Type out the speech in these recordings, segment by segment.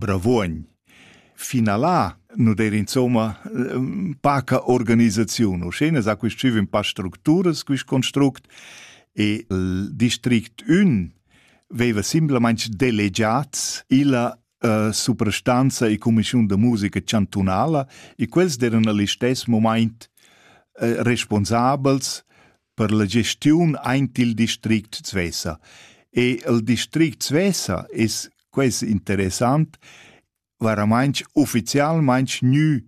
Bravuogn. Finalà nu d'eir insomma paca organisaziun. Uschè sa quist schiv in pa structuras, quist construct, e il district ün veiva simplamaing delegiats illa uh, suprastanza e cumischiun da musica chantunala e quels d'eran al istess momaint uh, responsabels per la gestiun aint il district Svesa. E il district Svesa es ques interessant, varamainch ufficialmainch gnü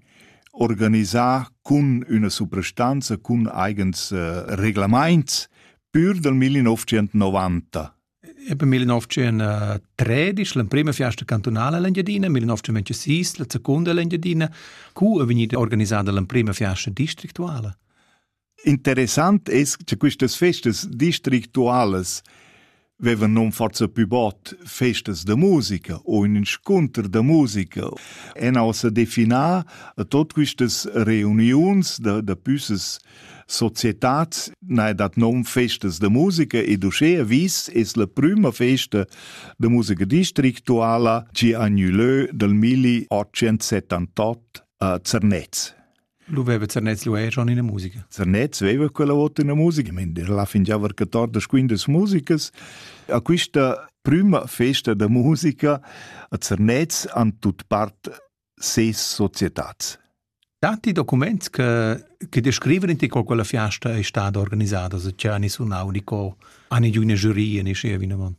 organisà cun üna suprastanza, cun eigens äh, reglamaints pür dal 1990. Eben 1913, l'emprima fiasta cantunala l'Engiadina, 1906, la seconda l'Engiadina, cu è vegnida organisada l'emprima fiasta districtuala? Interessant es cha quistas festas districtualas vevan nom forza pü bod festas da musica o ün inscunter da musica en ha ussa definà a tot quistas reuniuns da, da püssas societats n'ha dat nom festas da musica ed uschea vis es la prüma festa da musica districtuala chi ha gnü lö dal 1878 a Zernez. Luveva Zernez lueva schon ina musica. Zernez veva quella vota una musica, mender la fingiava che tordas quindas musicas. A questa prima festa da musica a Zernez han tut part ses societats. Tanti documents che, che descrivono ti co quella fiasta è stata organizzata, se c'è ani sunau, ni co, ani giù una giuria, ni scia vinavant.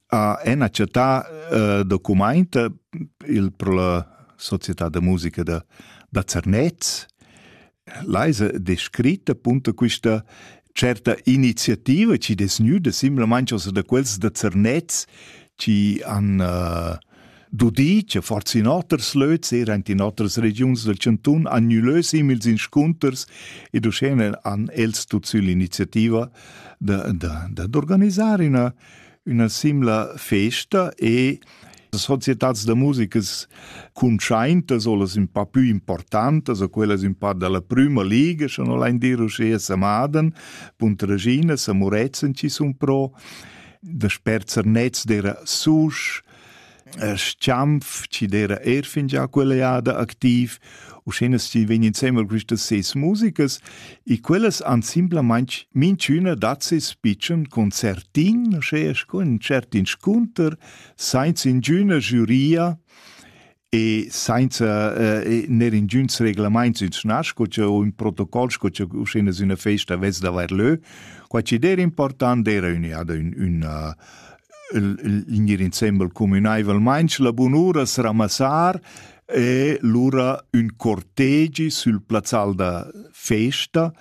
ha ena chattà eh, documaint il pro la società da musica da, da Zernez l'haisa descritta punto questa certa iniziativa ci des nüda simplesmente also da quels da Zernez ci han uh, dudi che forzi in oters löts era in oters regions del Cantun annulö simils inscunters ed uschene han els tut sül iniziativa da, da, da d'organizzare una üna simla festa e societats da musicas cuntschaintas o las ün pa pü importantas o quellas ün pa da la prüma liga, scha no lain dir uschea Samaden, Punta Regina, Samuretzen chi sun pro, da sperzer nets d'eira susch, Schanf chi d'eira eir fingià quella eada activ, uschè chi vegn insembel quistas ses musicas e quellas han simplamaing minchüna dat seis pitschen concertin, uschè scu ün tschert inscunter, sainza ingüna giuria e sainza ner ingüns reglamaints insnà sco cha o ün protocol sco cha uschè üna festa vess d'avair lö. Qua chi d'eira important d'eira ün'eada ün in insembel communaivelmain la bunura sramassar e lura ün cortegi sül plazzal da festa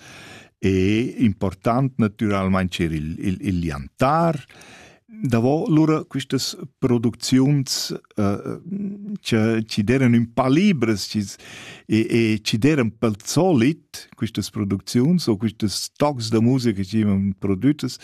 e important natüralmaing er il, il, il liantar. Davo lura quistas producziuns uh, che, ci deran ün pa libres ci, e, e ci deran pel solit quistas producziuns o quistas stocks da musica che ci ivan prodüttas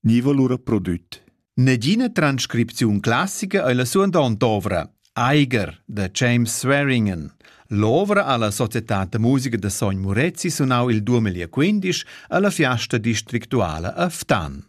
niva lura prodüt. Negina transcripziun classica ei la suandonta ovra, Eiger da James Swearingen. L'ovra alla Società da musica da Sogn Murezi sunau il 2015 alla fiasta districtuala a Ftan.